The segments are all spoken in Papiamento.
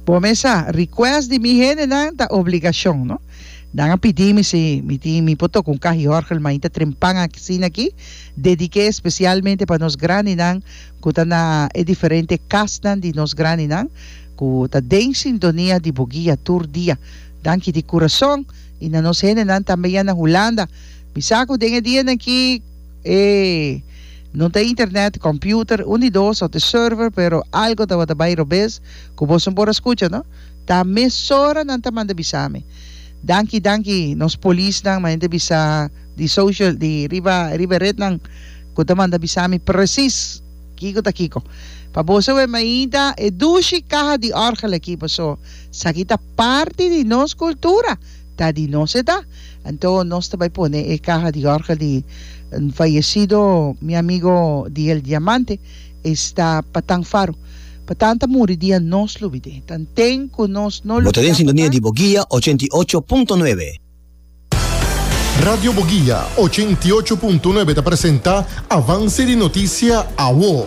Bo mes sa, request di mi hendenan ta obligashon, no? Nan a pidi mi si mi tin mi por toka un kahioorgel ma inta trempan asina aki, dedik'é espesialmente pa nos grandinan ku ta na e diferente kasnan di nos grandinan ku ta den sintonia di bo guia tur dia. Danki di kurason i na nos hendenan tambe ya na Hulanda. Mi sa ku den e dianan aki. E no ta internet, computer, un di dos of the server pero algo tabata bai robes cu boso no por a scucha no ta mesora nan ta manda bisa mi danki danki nos polis nan ma hende bisa di social di riba riba red nan cu ta manda bisa mi precies kico ta kico pa boso wea mi ainda e dushi caha di orgel aki paso saki ta parti di nos cultura. Ta di nos e ta. Anto nos ta bai pone e kaha di orga di N fayesido mi amigo di El Diamante. E sta Patan Faro. Patan ta muri dia nos lo bide. Tan ten ku nos no Bo lo ta den bida sintonia di Patan. Boguia ochenta i ocho punto nuebe. Radio Boguia ochenta i ocho punto nuebe ta presenta Avance di Noticia, Awo.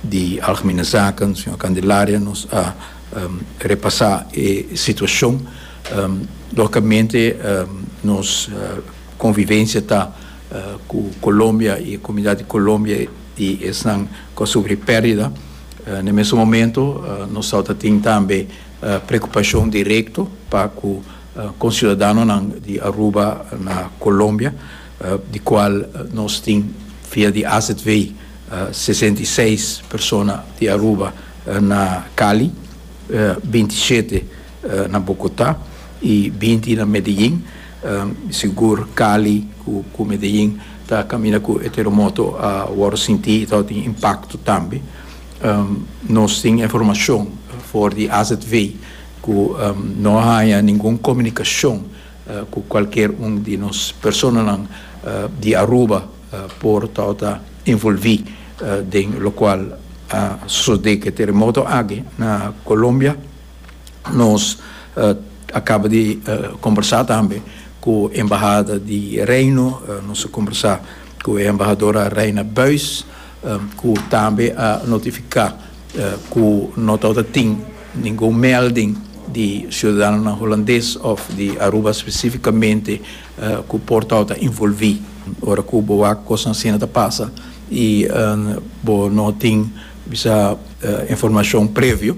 di Algemene Zaken, señor Candelaria, nos a repasa e situacion. Logicamente nos convivencia ta cu Colombia y e comunidad di Colombia y esnan cu a sufri perdida. Na e mesun momento nos tawata ta tin tambe preocupacion directo pa cu conciudadanonan di Aruba na Colombia. di cual nos tin via di AZW sesenta i seis persona di Aruba na Cali, binti i shete na Bogota y binti na Medellin. Sigur Cali cu Medellin ta caminda cu e terremoto a worde sinti y ta tin impacto tambe. Nos tin informacion for di AZW cu no a haya ningun comunicacion. Cu cualkier un di nos personanan di Aruba por ta ota involvi den locual a sosode cu e teremoto aki na Colombia. Nos a caba di combersa tambe cu embahada di Reino, nos a combersa cu e embahadora Reina Buijs. ku tambe a notifiká ku no ta wòrdu tin ningun mèlding di siudadanonan Hulandes òf di Aruba spesífikamente ku por tabata ta involví ora ku bo wak kosnan asina ta pasa i bo no tin bisa informashon previo.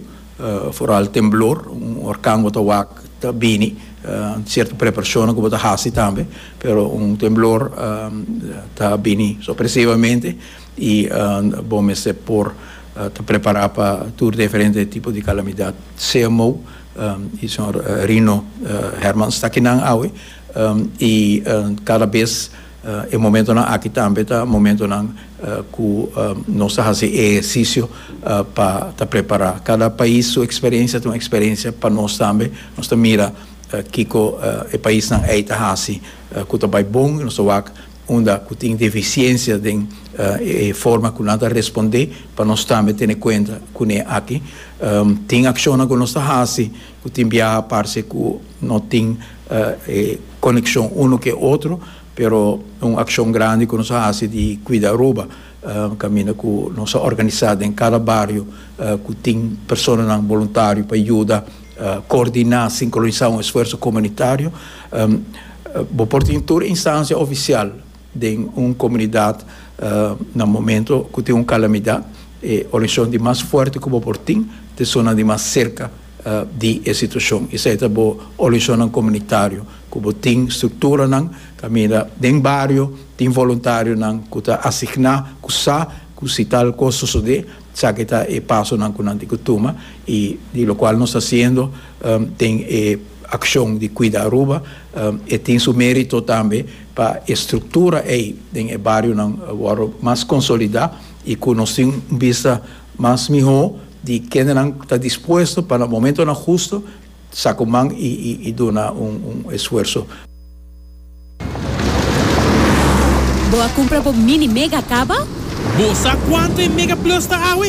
Foral temblor, un orkan bo ta wak ta bini, sierto preparashonnan ku bo ta hasi tambe, pero un temblor ta bini sopresivamente i bo mester por ta prepará pa tur diferente tipo di kalamidat. Sea Mou i señor Rino Hermans ta kinan awe i kada bes. E momentonan aki tambe ta momentonan ku nos ta hasi e ehersisio pa ta prepará. Kada pais su eksperensia ta un eksperensia pa nos tambe. Nos ta mira kiko e paisnan ei ta hasi ku ta bai bon i nos ta wak unda ku tin defisiensia den e forma ku nan ta respondé pa nos tambe tene kuenta kuné aki. Tin akshonnan ku nos ta hasi. Ku tin biaha parse ku no tin e konekshon unu ku e otro, pero un akshon grandi ku nos a hasi di kuida Aruba, kaminda ku nos a organisá den kada bario ku tin personanan boluntario pa yuda koordiná, sinkronisá un esfuerso komunitario. Bo por tin tur instancia ofisial Den un komunidat na momento ku tin un kalamidat e oracion di mas fuerte ku bo por tin te sonan di mas serka di e situacion. Esei ta bo oracionnan komunitario ku bo tin strukturanan kaminda den bario tin voluntarionan ku ta asigna ku sa ku si tal kos sosode esaki ta e pasonan ku nan tin ku tuma i di lokual nos ta hasiendo den e akshon di kuida Aruba e tin su merito tambe. Pa e struktura ei den e barionan wòrdu mas konsolidá i ku nos tin un bista mas mihó di kendenan ta dispuesto pa na momentonan hustu sa ku man i duna un esfuerso. Bo a kumpra bo Mini Mega kaba? Bo sa kuantu e Mega Plus ta awe?